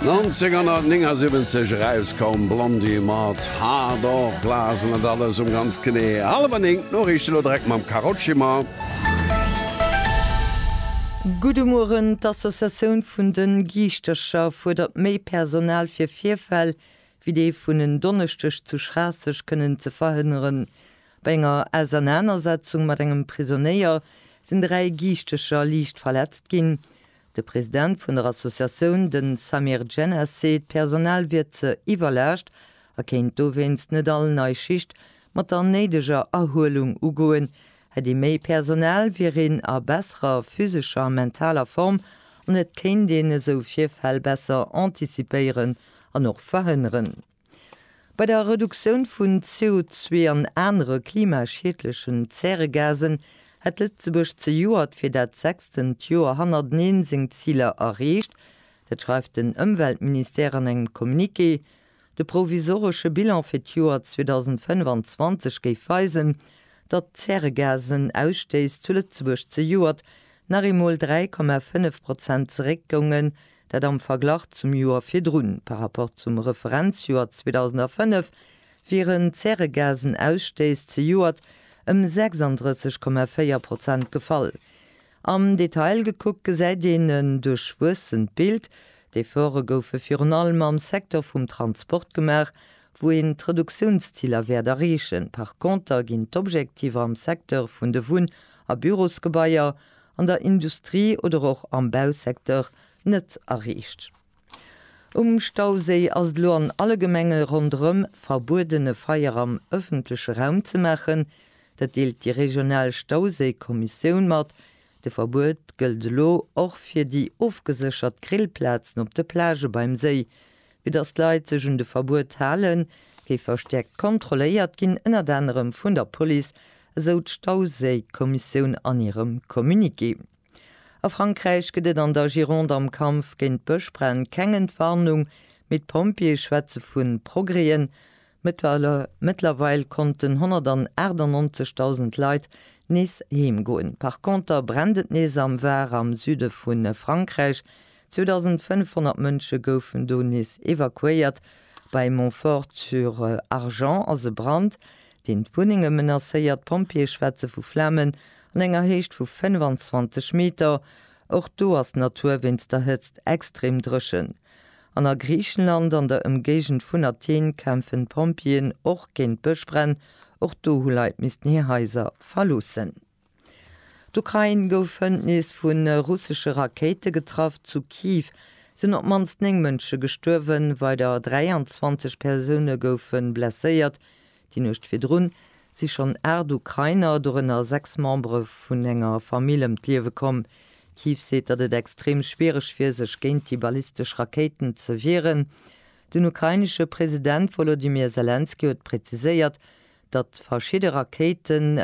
1979 erauskoum Blondie mat Heart of Glass an et alles um ganz genee hallwer néng. D'Noriichten elo direkt mam Carole Schimmer. Gudde Mueren, D'Associatioun vun de Giischtercher fuerdert méi Personal fir Virfäll wéi dee vun en Donneschdeg zu Schraasseg kënnen ze verhënneren. Bei enger Ausernanersetzung mat engem Prisonéier sinn dräi Giischtercher liicht verletzt ginn. De President vun der Associatioun, de Samir Djennas, seet, d'Personal wier ze iwwerlaascht a kéint dowéinst net all nei Schicht mat der néideger Erhuelung ugoen. Hätt ee méi Personal, wier een a besserer physescher a mentaler Form an et kéint een esou Virfäll besser antizipéieren an och verhënneren. Bei der Reduktioun vun CO2 an anere klimaschiedlechen Zäregasen hätt Lëtzebuerg zejoert fir dat sechstent Joer hannerteneen seng Ziler erreecht. Dat schreift den Ëmweltministère an engem Communiqué. De provisoresche Bilan fir d'Joer 2025 géif weisen, datt d'Zäregasen-Ausstéiss zu Lëtzebuerg zejoert nach eemol 3,5 Prozent zeréckgounge Dat am Verglach zum Joer virdrun. Par Rapport zum Referenzjoer 2005 wieren d'Zäregasenausstëiss zejoert ëm 36,4 Prozent gefall. Am Detail gekuckt gesäit een en duerchwuessent Bild. D'Efforte goufe virun allem am Secteur vum Transport gemaach, wou een d'Reduktiounsziler wäert erreechen. Par Konter ginn d'Objektiver am Secteur vun de Wunn a Bürosgebaier an der Industrie oder och am Bausecteur net erreecht. Um Stauséi ass et elo an alle Gemenge ronderëm verbuedene Feier am ëffentleche Raum ze maachen. Dat deelt déi regional Stauséi-Kommissioun mat. De Verbuet gëllt elo och fir déi ofgeséchert Grillplazen op de Plagë beim Séi, Fir datt d'Leit sech un de Verbuet halen, géif verstäerkt kontrolléiert ginn, ënnert anerem vun der Police, esou d'Stauséikommissioun an hirem Communiqué. A Frankräich gëtt et an der Gironde am Kampf géint Bëschbränn keng Entwarnung, mee d'Pompjeeë schwätze vu Progrèsen. Mëttlerweil konnten 198.000 Leit nees heem goen. Par Conter brennt et nees am Var, am Süde vu Frankräich, 2.500 Mënsche goufen do nees evakuéiert. Bei Montfort-sur-Argens ass e Brand, deen d'Wunnenge menacéiert. D'Pompjeeë schwätze vu Flamen an enger Héicht vu 25 Meter. Och do ass d'Natur wéinst der Hëtzt extrem dréchen. An a Griichenland an der Ëmgéigend vun Athen kämpfen d'Pompjeeën och géint Bëschbränn. Och do hu Leit missten hir Haiser verloossen. D'Ukrain gouf hënt nees vu russesche Rakéite getraff. Zu Kyiv sinn op d'mannst 9 Mënsche gestuerwen, weider 23 Persoune goufe blesséiert. Déi Nuecht virdrun si schonn 8 Ukrainer, dorënner 6 Membere vun enger Famill, ëm d'Liewe komm. Kyiv seet, datt et extrem schwiereg wier, sech géint déi ballistesch Rakéiten ze wieren. Den ukrainesche President Wolodymyr Selenskyj huet präziséiert, datt verschidde Rakéiten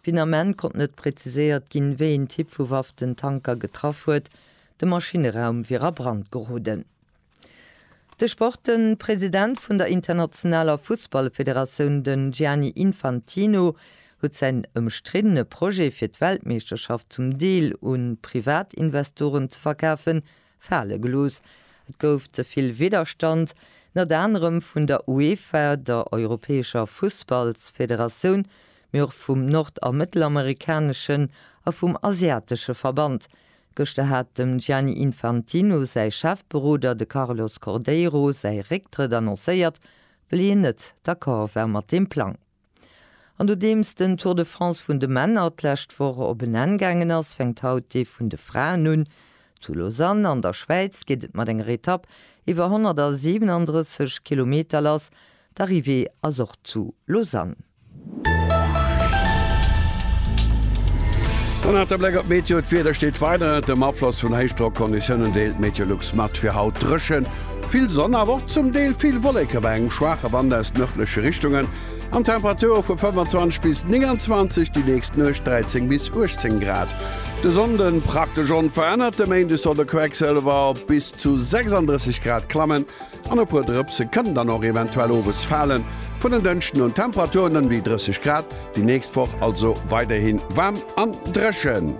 Finament konnt net präziséiert ginn, wéi een Typ vu Waff den Tanker getraff huet. De Maschinneraum wier a Brand geroden. De Sportpresident vun der internationaler Fussballfederatioun, den Gianni Infantino, huet säin ëmstriddene Projet fir d'Weltmeeschterschaft zum Deel un Privatinvestoren ze verkafen, Fale gelooss. Et gouf ze vill Widderstand, nët anerem vun der UEFA, der europäescher Fussballsfederatioun, mee och vum nord a mëttelamerikaneschen a vum asiatesche Verband. Gëschter hat dem Gianni Infantino säi Chefberoder, de Carlos Cordeiro, säi Récktrëtt annoncéiert, wëll hien nët d'accord war mat deem Plang. An nodeems den Tour de France vun de Männer d'lescht Woch op en Enn gaangen ass, fänkt haut dee vun de Fraen un. Zu Lausanne an der Schwäiz geet et mat enger Etapp iwwer 137 Kilometer lass. D'Arrivée ass och zu Lausanne. An nach de Bléck op d'Meteo, D'Wieder steet weider ënnert dem Afloss vun Héichdrockconditiounen, deelt d'Meteolux mat. Fir haut dréchen, Vill Sonn, awer och zum Deel vill Wolleke bei engem schwaache Wand aus nërdleche Richtungen an Temperature vu 25 bis 29, déi nächst Nuecht 13 bis 18 Grad. De Sonnde praktesch onverännert, de Méinde soll de Quecksëlwer op bis zu 36 Grad klammen an e puer Drëpse kënnen dann och eventuell owes falen. Vun den Dënschden un Temperaturen ëm déi 30 Grad, déi nächst Woch also weiderhi waarm an dréchen.